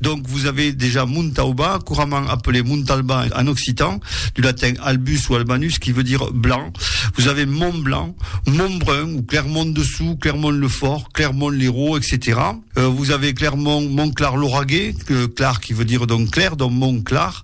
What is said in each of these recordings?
Donc vos avez dejà Montauba, couramment appelé Montalba en occitan, du latin albus ou albanus qui veut dire blanc, vos avez Montblanc, Montbrun ou Clermont-Dessous, Clermont-le-Fort, Clermont-Lérault, etc. Vos avez Clermont, Montclar-Lauragais, clar qui veut dire donc clair, donc Montclar.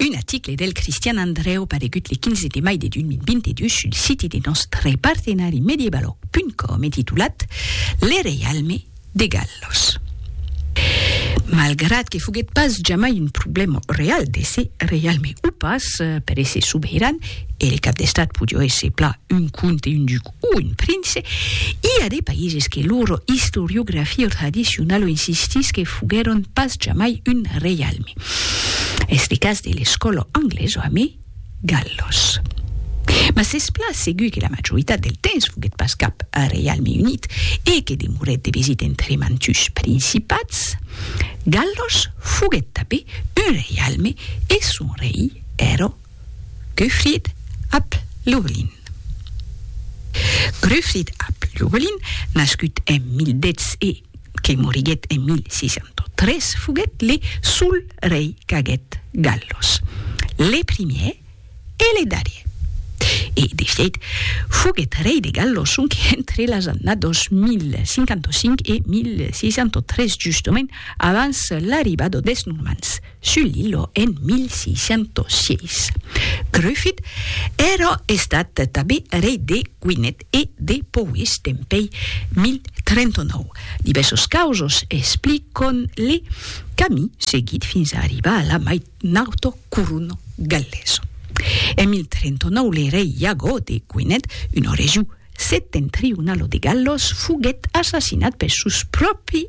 Un aticle del Cristian Andrèu paregut le 15 de mai de 2022 sul siti de nòstre partenari mediebaloc.com e titulat Le reialme de Gallos. Malgrat que foguèt pas jamai un problèma real d'èsser reialme o pas per èsser sobeiran, e le cap d'estat podió èsser plan un comte e un duc, o un prince, i a de païses que lor istoriografia tradicionala insistís que foguèron pas jamai un reialme. Es de cas de l'escòla anglesa amé Gallos. Mas es plan segur que la majoritat del temps foguèt pas cap reialme unit e que demorèt de vesit entre mantus principats. Gallos foguèt tapé un reialme e son rei èra Gruffudd ap Llywelyn Gruffudd ap Llywelyn, nascut en 1010 e que moriguèt en 1603, foguèt le sol rei qu'aguèt Gallos, le primièr e le darrièr. E de fièit, foguèt rei de Gallos sonque entre las annados 1055 e 1603, justament abans l'arribada des Normands. Sul lillo en 1606. Gruffydd èra estat tanben rei de Gwynedd e de Powys dempèi 1039. Divèrsos causos expliquon le camí seguit fins a arribar a la mai nauto corona galesa. En 1039 le rei Iago de Gwynedd, una region setentrionala de Gallos, foguèt assassinat per sos pròpri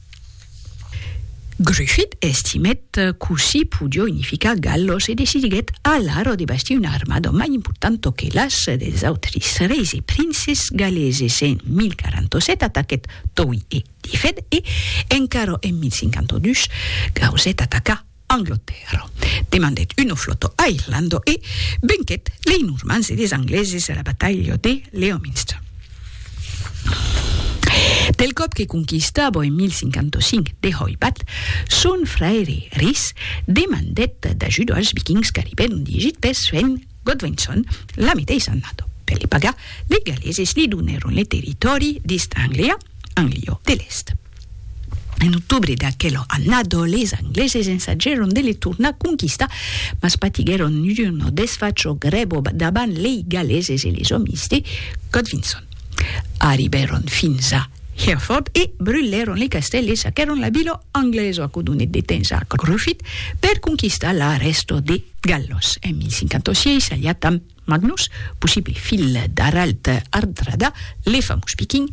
Gruffydd estimèt cossí podió unificar Gallos e decidiguèt alara de bastir una armada mai importanta que las dels autris reis e princes galeses. En 1047 ataquèt Towy e Dyfed e, encara en 1052, gausèt atacar Anglotèrra. Demandèt uno flotto a Irlando e venquèt lei Normans e des Angleses a la batalha de Leominster. Del còp que conquistava en 1055 de Hoybath, son fraire Rhys demandèt d'ajut als Vikings qu'arribèron d'Egit pes fent Godwinson, la meteissa annada, per li pagar, li galeses li donèron li territòri d'East Anglia, Anglio de l'Èst. En octobre d'aquela annada, les Angleses ensagèron de li tornar conquistar, mas patiguèron una desfacha grèva davant lei galeses e les òmis de Godwinson. Arribèron fins a Hereford e brulèron li castèl e saquèron la vila anglèsa, aquò donèt de temps a Gruffydd per conquistar la rèsta de Galhos. En 1056, aliat amb Magnus, possible filh d'Harald Hardrada, le famós viking,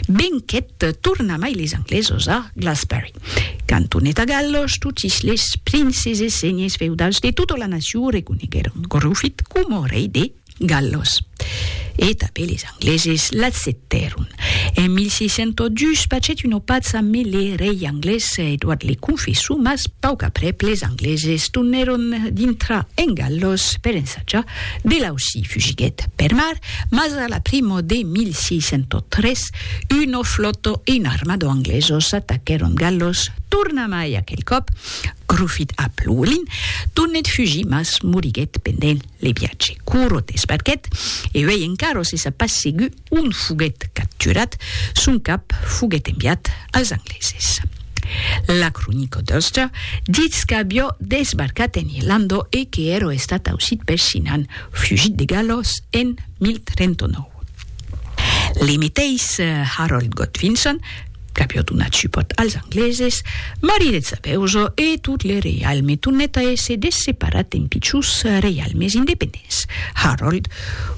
venquèt tornamai les Anglesos a Glassberry. Quand tornèt a Galhos, totis les princes e senhes feudals de tota la nacion reconeguèron Gruffydd coma rei de Gallos. E tanben es Angleses l'acceptèron. En 1602 pachèt una paça me le rei anglés Edward le Confessor, mas pauc aprèp les Angleses tornèron dintrar en Gallos per ensajar. De lausi fugiguèt per mar, mas a la primo de 1603 una flòta e un armador anglesos ataquèron Gallos tornamai aquel còp Gruffydd ap Lúwelyn tornèt fugir mas moriguèt pendent Li piace curot e sparquet, e uèi encara se sap pas segur ont foguèt capturat, son cap foguèt enviat als angleses. La cronica d'Ulster ditz qu'avió desbarcat en Irlanda e que èra estat aucit per Sinan, fugit de Galos en 1039. Li meteis Harold Godvinson, Capiò donat supòrt als angleses, mariretz a Beuzo e tot le reialme tornèt a èsser desseparat en pichons reialmes independents. Harold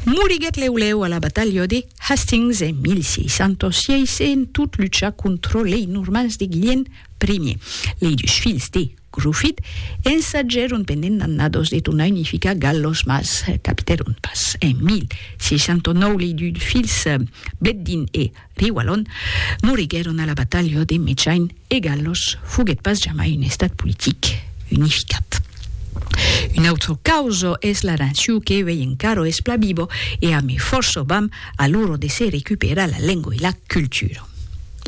moriguèt lèu lèu a la batalha de Hastings en 1606 en tot luchar contra lei Normands de Guilhèm I. Lei dus filhs de Gruffydd ensagèron pendent d'annadas de tornar unificar Galhos mas capitèron pas. En 1609 lei dus filhs Bledin e Li Wallon moriguèron a la batalha de Mechain e Gallos foguèt pas jamai un estat politic unificat. Un autre causo es la naciu que uèi encaro es pla vivo e a me fòrço vam a loro de se recuperar la lengo e la cultura.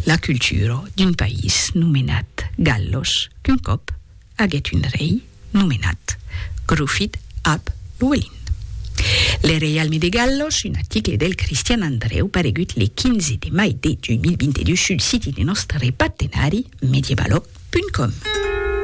La cultura d'un país nomenat Gallos qu'un còp aguèt un rei nomenat Grufid ab Llwelyn. Le reialme de Gallos, un aticle del Cristian Andreu paregut le 15 de mai de 2022 sul siti de nòstre partenari Medievalog.com.